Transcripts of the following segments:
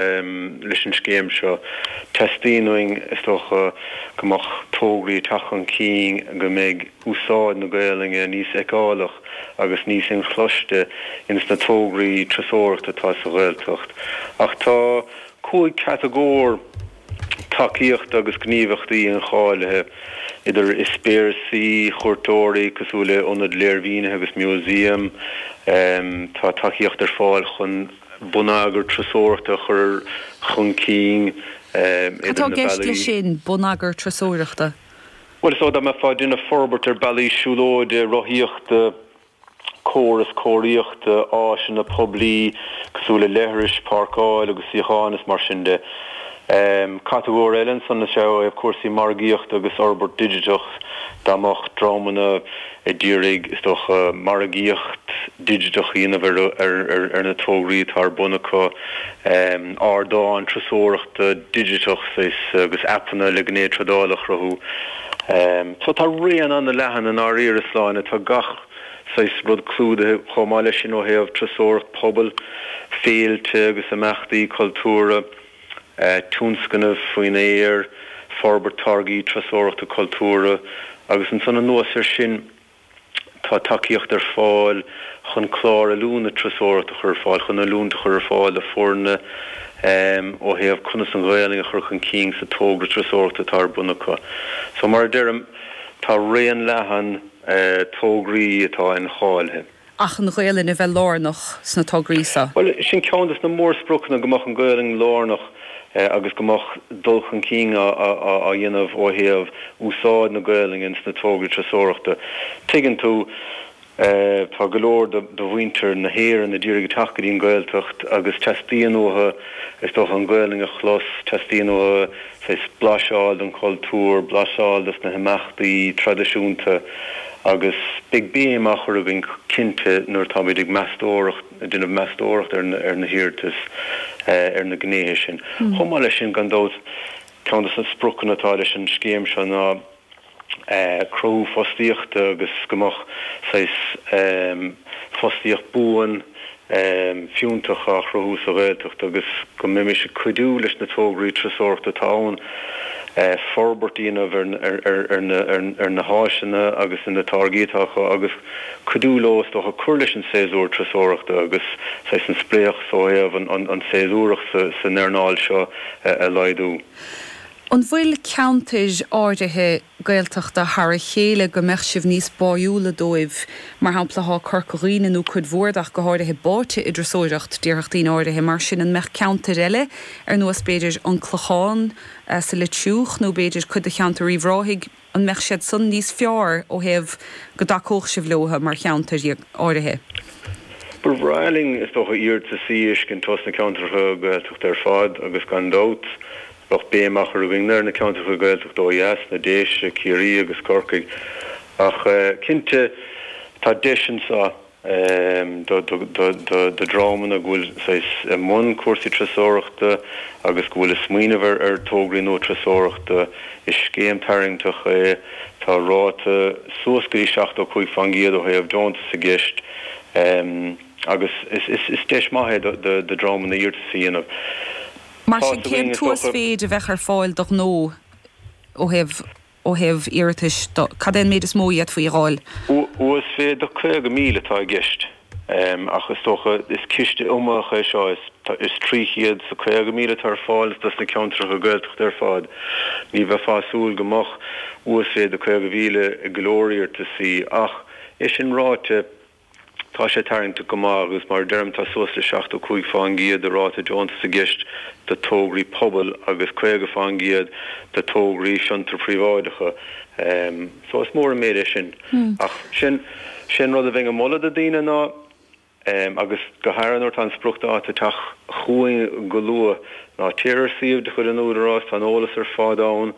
Leis an scéim seo, teastaíonn uainn, is dócha, go mbeadh tograí ag teacht chun cinn go mbeidh úsáid na Gaolainne níos fheiceálach agus níos inchloiste ins na tograí turasóireachta atá sa Ghaeltacht. Ach tá cúig chatagóir tacaíochta agus gníomhachtaí incháilithe, idir eispéiris chuairteoirí, cosúil le hIonaid Léirmhínithe agus músaem, tá tacaíocht ar fáil chun. bonneagar turasóireachta a chur chun cinn Cad atá i gceist leis sin, bonneagar turasóireachta? Bhuel, is dóigh dá mbeifeá ag déanamh forbairt ar bealaí siúlóide, rothaíochta, córas cóiríochta, áiseanna poiblí cosúil le leithris, páirceáil agus suíocháin is mar sin de. Catagóir eile ansan is ea ó thaobh cúrsaí margaíochta agus fhorbairt digiteach, dá mbeadh dreamanna ag iarraidh, is dócha, margaíocht, digiteach a dhéanamh ar na tograí atá ar bun acu, ardáin turasóireachta digiteacha agus aipeanna le gné trádála a chruthú. So tá raon an-leathan i ndáiríre, Sláine, tá gach saghas rud clúdaithe chomh maith leis sin ó thaobh turasóireacht pobail, féilte agus imeachtaí cultúrtha, tionscnaimh faoin aer, forbairt táirgí turasóireachta cultúrtha agus ansan anuas air sin, Tá tacaíocht ar fáil chun clár oiliúna turasóireachta a chur ar fáil, chun oiliúint a chur ar fáil do foirne ó thaobh conas an Ghaelainn a chur chun cinn sa togra turasóireachta atá ar bun acu. So mar a deirim, tá raon leathan tograí atá incháilithe. ach an Ghaelainn a bheith lárnach sna tograí seo. Bhuel, sin ceann de na mórspriocanna, go mbeadh an Ghaelainn lárnach agus go mbeadh dul chun cinn á dhéanamh ó thaobh úsáid na Gaelainne sna tograí turasóireachta. Tuigeann tú, tá go leor de mhuintir na hÉireann ag iarraidh teacht go dtí an Ghaeltacht agus teastaíonn uathu, is dócha, an Ghaelainn a chlos, teastaíonn uathu, Is blaiseadh den chultúr, blaiseadh de na himeachtaí traidisiúnta agus beidh béim á chur againn cinnte nuair atáimid ag meastóireacht, ag déanamh meastóireacht ar na hiarratais ar na gnéithe sin. Chomh maith leis sin gan dabht ceann de na spriocanna atá leis an scéim seo ná cruthú fostaíochta agus go mbeadh saghas fostaíocht buan, fiúntach á chruthú sa Ghaeltacht agus go mbeimis ag cuidiú leis na tograí turasóireachta atá ann forbairt a dhéanamh ar na háiseanna agus ar na táirgí atá acu agus cuidiú leo is dócha cur leis an séasúr turasóireachta agus saghas an spleáchas ó thaobh an séasúracht san earnáil seo a laghdú. An bhfuil ceantair áirithe Gaeltachta thar a chéile go mbeadh sibh níos báiúla dóibh, mar shampla tá Corca Dhuibhne nó cuid mhór de ach go háirithe báite i dturasóireacht déarfadh daoine áirithe mar sin an mbeadh ceantair eile ar nós b'fhéidir An Clochán sa Litriúch nó b'fhéidir cuid de cheantar Uíbh Ráthaigh An mbeadh siad san níos fearr ó thaobh go dtacódh sibh leo mar cheantair áirithe? Ba bhreá linn is dócha iarrataisí a fheiscint ó sna ceantracha Gaeltachta ar fad agus gan dabht bheadh béim againn ar na ceantracha Gaeltachta ó dheas, na Déise, Ciarraí agus Corcaigh. Ach cinnte tá deis anseo. do dhreamanna go bhfuil i mbun cúrsaí turasóireachta agus go bhfuil ag smaoineamh ar tograí nua turasóireachta. Is scéim tarraingteach é. Tá ráta suas go dtí 75 fán gcéad ó thaobh deontas i gceist agus is deis maith é do dhreamanna iarratas a dhéanamh. Mar sin, cén t-uasmhéid a bheadh ar fáil do ghnó ó thaobh. ó thaobh iarratais do, cad é an méid is mó a d'fhéadfaí a fháil? Uasmhéid de 50,000 atá i gceist ach is dócha, is ciste iomaíoch é seo, is trí chéad is 50,000 atá ar fáil dos na ceantracha Gaeltachta ar fad. Ní bheifeá ag súil go mbeadh uasmhéid de 50,000 i go leor iarrataisí ach, é sin ráite, Tá sé tarraingteach go maith agus, mar a deirim, tá suas le 75 fán gcéad de ráta deontas i gceist do tograí pobail agus 50 fán gcéad do tograí fiontar príobháideacha so is mór an méid é sin ach sin an rud a bheinn ag moladh do daoine ná agus go háirithe nuair atá an spriocdháta ag teacht chugainn go luath ná téir ar suíomh de chuid an Údarás tá an eolas ar fad ann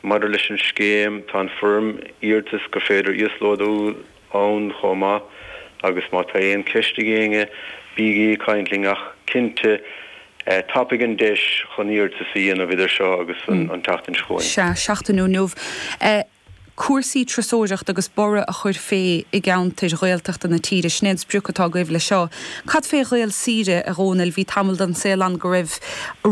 maidir leis an scéim tá an foirm iarratais gur féidir íoslódáil ann chomh maith agus má tá aon cheist ag éinne, bígí ag caint linn ach cinnte, tapaigh an deis chun iarratas a dhéanamh idir seo agus an tseachtain seo chugainn. Sea, seachtain ó inniu. Cúrsaí turasóireacht agus borradh a chur fé i gceantair Ghaeltachta na tíre, sin é an sprioc atá agaibh le seo. Cad fé Ghaelsaoire, a Dhomhnaill, bhí tamall den saol ann go raibh.